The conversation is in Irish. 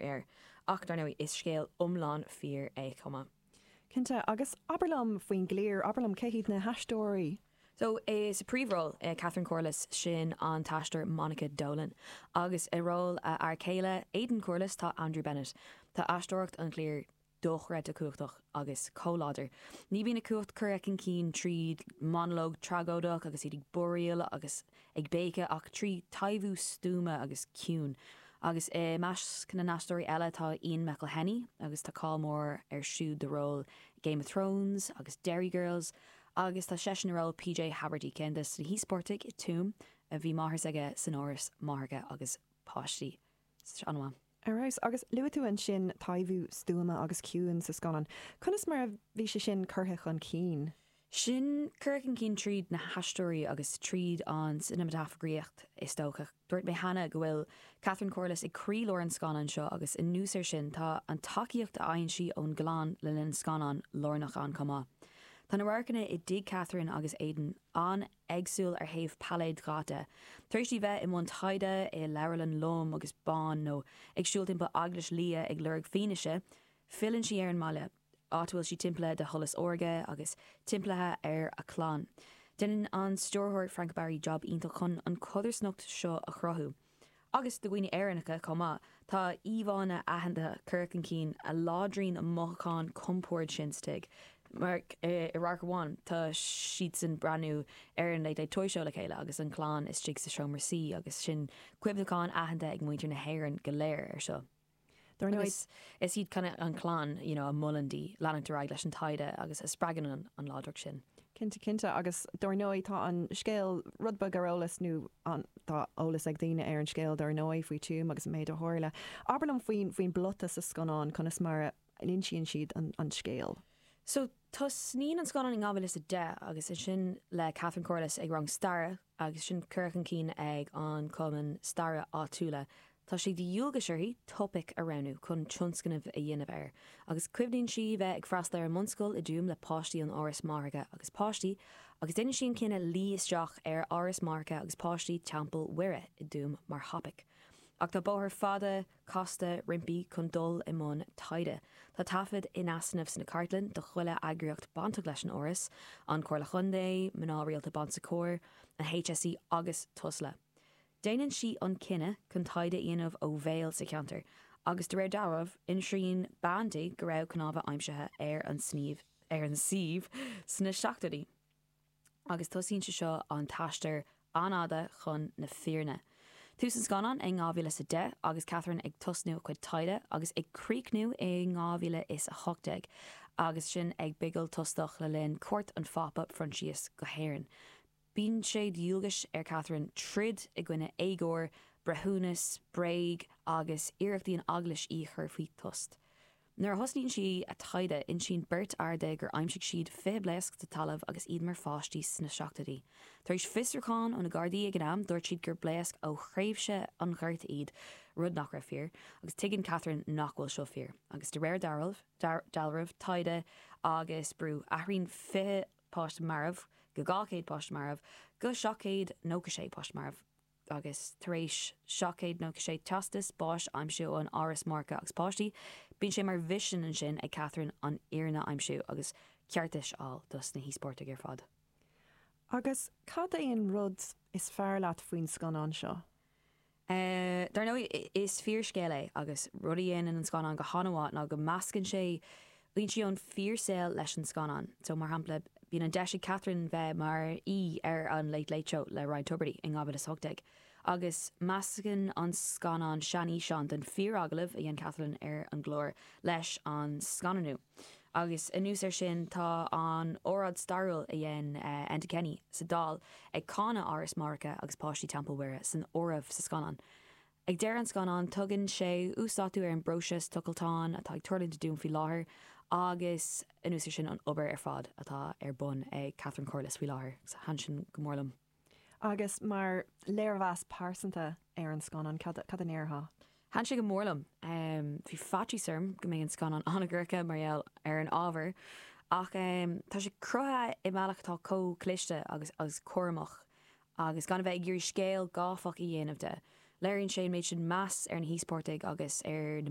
air, ach dar ndóigh is scéal iomlán fíor é chomh maith. Cinnte, agus abair liom faoin gcliar, abair liom cé hiad na haisteoirí? So, sa príomhról, Catherine Corless, sin an t-aisteoir Monica Dolan, agus i ról a fear céile, Aidan Corless, tá Andrew Bennett. Tá aisteoireacht an chliar dochreidte cumhachtach agus chomh láidir. Ní bhíonn a cumhacht curtha cun cinn trí monológ tragóideach agus iad ag búiríl agus ag béiceadh ach trí taibhiú stuama agus ciúin. Agus i measc na n-aisteoirí eile tá Ian McElhinney agus tá cáil mór ar siúd dá ról Game of Thrones agus Derry Girls agus tá seisean i ról PJ Haverty, ceann de na híospartaigh i Tuam a bhí a mháthair is aige san áras máithreacha agus páistí. An-mhaith. Ar fheabhas. Agus luaigh tú ansin taibhiú stuama agus ciúin sa scannán. Conas mar a bhí sé sin curtha chun cinn? Sin curtha chun cinn tríd na haisteoirí agus tríd an cineamataifeagraíocht, is dócha. Dúirt mé cheana go bhfuil Catherine Corless ag croílár an scannáin seo agus anuas air sin tá an tacaíocht a fhaigheann sí ón gclann le linn an scannáin lárnach ann chomh maith. Tá na radharcanna i dtigh Catherine agus Aidan an-. éagsúil ó thaobh pailléad dhaite, tar éis di bheith i mbun taighde i leabharlann lom agus bán nó ag siúl timpeall eaglais liath ag lorg fianaise, filleann sí ar an mbaile, áit a bhfuil sí timpeallaithe de sholas órga agus timpeallaithe ar a clann. Déanann an stiúrthóir Frank Barry jab iontach chun an chodarsnacht seo a chruthú. agus do dhaoine Éireannacha chomh maith, tá íomhánna aitheanta curtha chun cinn a láidríonn an mothúchán compoird sin sa tigh, mar i radharc amháin tá siadsan ag breathnú ar an Late Late Toy Show le chéile agus an chlann istigh sa seomra suí agus sin cuimhneachán aitheanta ag muintir na hÉireann go léir air seo. Dar ndóigh, is iad an chlann you know a mholann di leanúint ar aghaidh leis an taighde agus a spreagann an láidreacht sin. Cinnte, cinnte. Agus dar ndóigh, tá an scéal rud beag ar eolas, nó tá eolas ag daoine ar an scéal dar ndóigh faoi Tuam agus an méid a tharla. Abair liom faoin bplota sa scannán, conas mar a. a n-insíonn siad an scéal. So, tosnaíonn an scannán i 2010 agus sin le Catherine Corless ag rang staire agus sin curtha chun cinn ag an cumann staire áitiúla. Tá sé de dhualgas uirthi topaic a roghnú chun tionscnamh a dhéanamh air agus cuimhníonn sí bheith ag freastal ar an mbunscoil i dTuaim le páistí ón Áras Máithreacha agus Páistí agus déanann sí an cinneadh luí isteach ar Áras Máithreacha agus Páistí Teampall Mhuire i dTuaim mar thopaic ach tá bóthar fada casta roimpi chun dul i mbun taighde. Tá taifead in easnamh sna cartlainn de chuile eagraíocht bainteach leis an Áras, An Comhairle Contae, Mná Rialta Bon Secours, an HSE agus Tusla. Déanann sí an cinneadh chun taighde a dhéanamh ó bhéal sa cheantar agus de réir dealraimh, insíonn bean di go raibh cnámha aimsithe ar an suíomh sna seachtóidí. agus tosaíonn sé seo an t-aistear an-fhada chun na fírinne. Tús an scannáin é in 2010 agus Catherine ag tosú a cuid taighde agus ag críochnú i 2018 agus sinn ag bigil tostach le linn cuairt an Phápa Phroinsias go hÉirinn. Bíonn sé de dhualgas ar Catherine troid i gcoinne éagóir, breithiúnas, bréag agus iarrachtaí an Eaglais í a chur faoi tost. Nuair a thosaíonn sí a taighde, insíonn beirt fhear di gur aimsigh siad fiche blaosc sa talamh agus iad mar pháistí sna seachtóidí. Tar éis fiosrúchán ó na Gardaí ag an am, dúirt siad gur blaosc ó thréimhse an Ghorta iad, rud nach raibh fíor, agus tuigeann Catherine nach bhfuil seo fíor, agus de réir dealraimh, taighde agus brú, athraíonn fiche páiste marbh go dhá chéad páiste marbh go seacht gcéad nócha sé páiste marbh. agus tar éis seacht gcéad nócha sé teastas báis a aimsiú ón Áras Máithreacha agus Páistí, bíonn sé mar mhisean ansin ag Catherine an fhírinne a aimsiú agus ceartas a fháil dos na híospartaigh ar fad. Agus cad é an rud is fearr leat faoin scannán seo? Dar ndóigh, is fíorscéal é agus rud a dhéanann an scannán go han-mhaith ná go meascann sé blúiríní ón fíor saol leis an scannán so, mar shampla, bíonn an deis ag Catherine bheith mar aoi ar an Late Late Show le Ryan Tubridy in 2018 agus meascann an scannán seanfhíseán den fíor agallamh a dhein Catherine ar an gclár leis an scannanú agus anuas ar sin tá an óráid stairiúil a dhein Enda Kenny sa Dáil ag cáineadh Áras Máithreacha agus Páistí Teampall Mhuire san áireamh sa scannán. Ag deireadh an scannáin tugann sé uasdátú ar an bpróiseas tochailte atá ag tarlúint i dTuaim faoi láthair agus anuas ar sin an obair ar fad atá ar bun ag Catherine Corless faoi láthair, thaitin sin go mór liom. Agus mar léirmheas pearsanta ar an scannán, cad a ndéarfá? Thaitin sé go mór liom. Bhí faitíos orm go mbeidh an scannán an-dhorcha mar gheall ar an ábhar ach tá sé cruthaithe i mbealach atá chomh cliste agus cúramach Agus gan a bheith ag iarraidh scéal gáifeach a dhéanamh de, léiríonn sé an méid sin meas ar na híospartaigh agus ar na